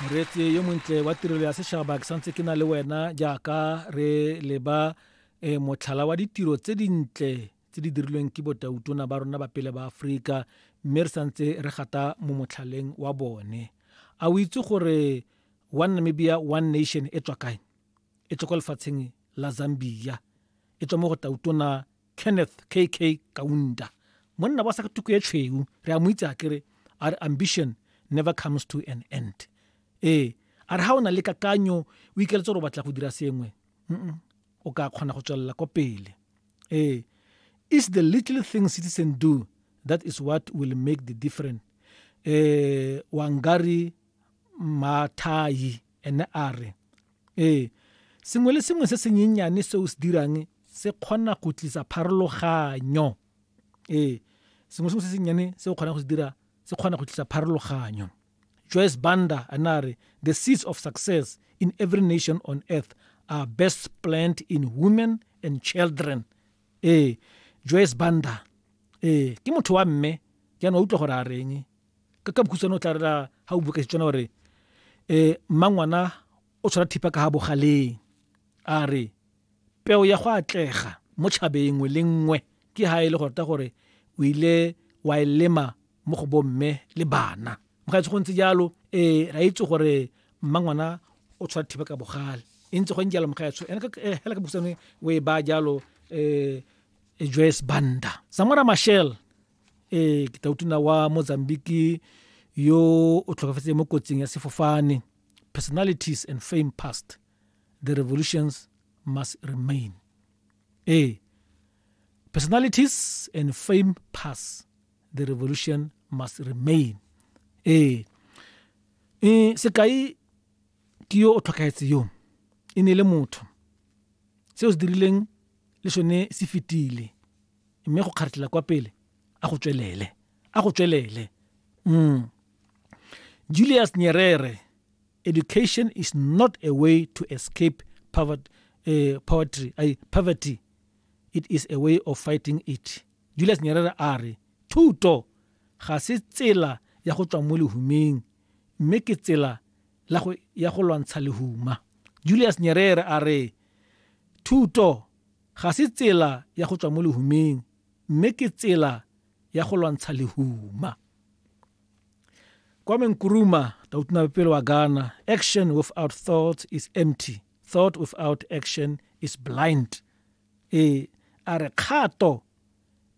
moreetsi yo montle wa tirelo ya setšhaba ke santse ke na le wena jaaka re leba um motlhala wa ditiro tse dintle tse di dirilweng ke botautona ba rona ba pele ba aforika mme re santse re gata mo motlhaleng wa bone a o itse gore one namibia one nation e tswa kae e tswa kwa lefatsheng la zambia e tswa mo go tautona kenneth kk kaunda monna wa sa tuku e tshweu re a mo itse a kere a re ambition never comes to an end ee a re ga o na le kakanyo o ikeletse gore o batla go dira sengwe o ka kgona go tswelela kwa pele ee is the little thing citizen do that is what will make the difference eh wangari mathai ene a re Ee, sengwe le sengwe se senyenyane se o se dirang se kgona go tlisa pharologanyo. Ee, sengwe sengwe se sennyane se o kgonang go se dira se kgona go tlisa pharologanyo. Joyce Banda a ne a re, The seeds of success in every nation on earth are best plant in women and children. Ee, Joyce Banda. Ee, ke motho wa mme, jaanong utlwa gore a reng. ka ka bokhutshwane o tla rera ha o bua ka Setswana gore um mmangwana o tshwara thipa ka ga bogaleng a re peo ya go atlega mo tšhabeng nngwe le nngwe ke ha e le gorta gore o ile wa e lema mo go bomme le bana mo ga go ntse jalo um ra itse gore mmangwana o tshwara thipa ka bogale e ntse go jalo mogaetsho ene eh, hela ka bokhutshwane o e ba jalo um joyce banda samora mashel ee ke tautuna wa mozambique yo o tlhokafetse mo kotsing ya sefofane personalities and fame past the revolutions must remain ee personalities and fame pass the revolution must remain ee e sekai ke yo o tlhokagetse yo e ne le motho se o se dirileng le sone se fetile mme go kgaretlela kwa pele a go tswelele a go tswelele mm. julius nyerere education is not a way to escape poverty, uh, eh, poverty, uh, poverty it is a way of fighting it julius nyerere a re thuto ga se tsela ya go tswa mo lehumeng mme ke tsela ya go lwantsha lehuma julius nyerere a re thuto Ga se tsela ya go tswa mo lehumeng, mme ke tsela ya go lwantsha lehuma. Kwame Nkrumah, tautunabepele wa Ghana, Action without thought is empty, thought without action is blind. E a re kgato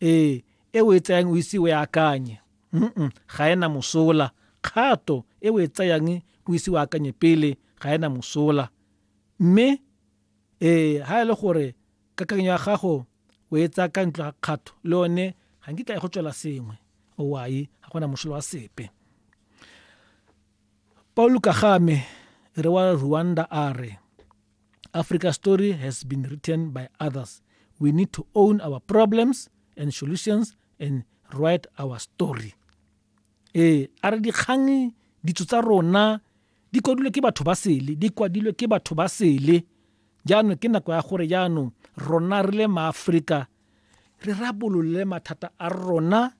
e e o e tsayang o ise o e akanye mm ga ena mosola kgato e o e tsayang o ise o akanye pele ga ena mosola mme Ee, ha e le gore kakanyo ya gago o e tsaya ka ntlo ga kgatho le one ga nkitla e go tswela sengwe owai ga gona mošolo wa sepe paul kagame re wa rwanda a re africa story has been written by others we need to own our problems and solutions and write our story ee a re dikgang ditso tsa rona Di kwadilwe ke batho ba sele, di kwadilwe ke batho ba sele. Jaanong ke nako ya gore jaanong rona re le maaforika re rabolole mathata a rona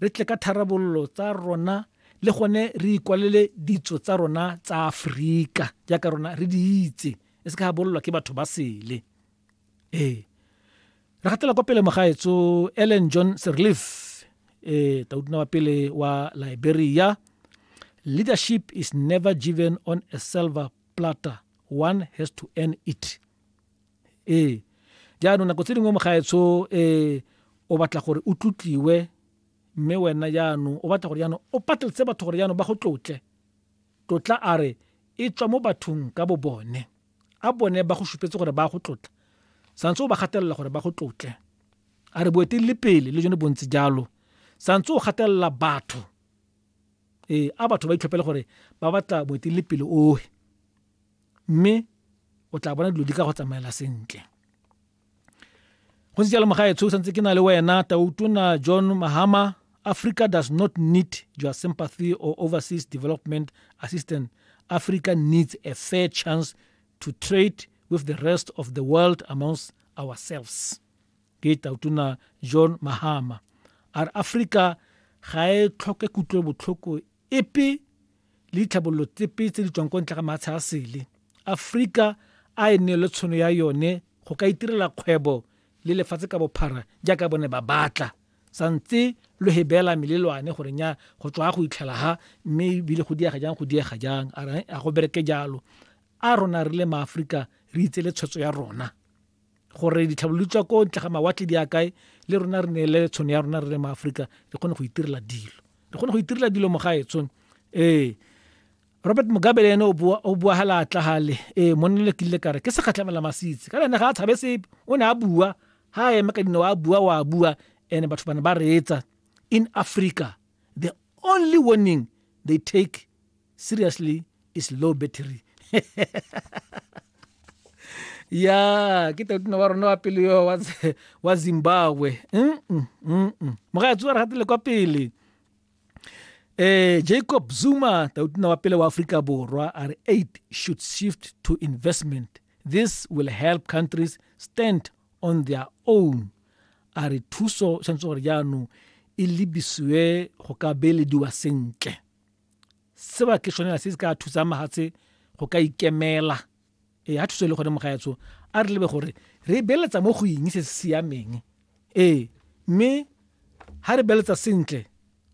re tle ka tharabololo tsa rona le gone re ikwalele ditso tsa rona tsa aforika jaaka rona re di itse e se ka bololwa ke batho ba sele ee re gatela kwa pele mogaetso ellen john serleaf e eh, taudina wa pele wa liberia leadership is never given on a silver platter one has to earn it ee eh, jaanong nako tse dingwe mogaetsho um eh, o batla gore o tlotliwe mme wena jaanong o batla gore jaanong o patletse batho gore jaanong ba go tlotle tlotla a re e tswa mo bathong ka bo bone A bone ba go supetse gore ba go tlotla? Santse o ba gatelela gore ba go tlotle. A re boeteledipele le jone bontse jalo. Santse o gatelela batho. Ee, a batho ba itlhophele gore ba batla boeteledipele ohe. Mme o tla bona dilo di ka go tsamaela sentle. go se jalo mogaetsho o santse ke na le wena tautona john mahama africa does not need your sympathy or overseas development assistance africa needs a fair chance to trade with the rest of the world amongst ourselves ke tautona john mahama a re africa ga e tlhoke kutlobotlhoko epe le ditlhabololo tsepe tse di tswang ko ntle ga maatsha a sele aforika a e nne le tshono ya yone go ka itirela kgwebo le lefatshe ka bophara jaaka bone ba batla sa ntse lo he beela melelwane gore nya go tswa go itlhela ha mme ebile go diega jang go diega jang a go bereke jalo a rona re le maaforika re itse le tshwetso ya rona gore ditlhabololo tsa ko ntle ga mawatle di akae le rona re ne le tshono ya rona re le maaforika re kgone go itirela dilo re kgone go itirela dilo mogaetsong ee robert mugabe le ene o bua ga laatla gale ee monnele ke ile kare ke segatlhamela masitse ka lene ga a tshabe sepe o ne a bua ga eme ka dinao a bua o a bua and batho bane ba reetsa in africa the only warning they take seriously is low battery ya ke teotino wa rona wa pele yo wa zimbabwe mogaetsi wa re gatile kwa pele eh Jacob Zuma tautna wa pele wa Afrika Borwa a re aid should shift to investment this will help countries stand on their own a re thuso tshwanetse gore jaanong e lebisiwe go ka beelediwa sentle se ba ke sone se se ka thusang mahatshe go ka ikemela ee ga thuso e le gone mogaetsho a re lebe gore re beletsa mo go eng se se siameng ee mme ga re beletsa sentle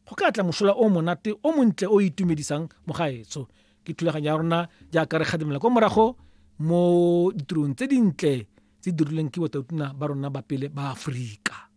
go ka tla mosola o monate o montle o itumedisang mogaetsho ke thulaganyo ya rona jaaka re kgadimela kwa morago mo ditirong tse dintle tse dirilweng ke botautuna ba rona ba pele ba aforika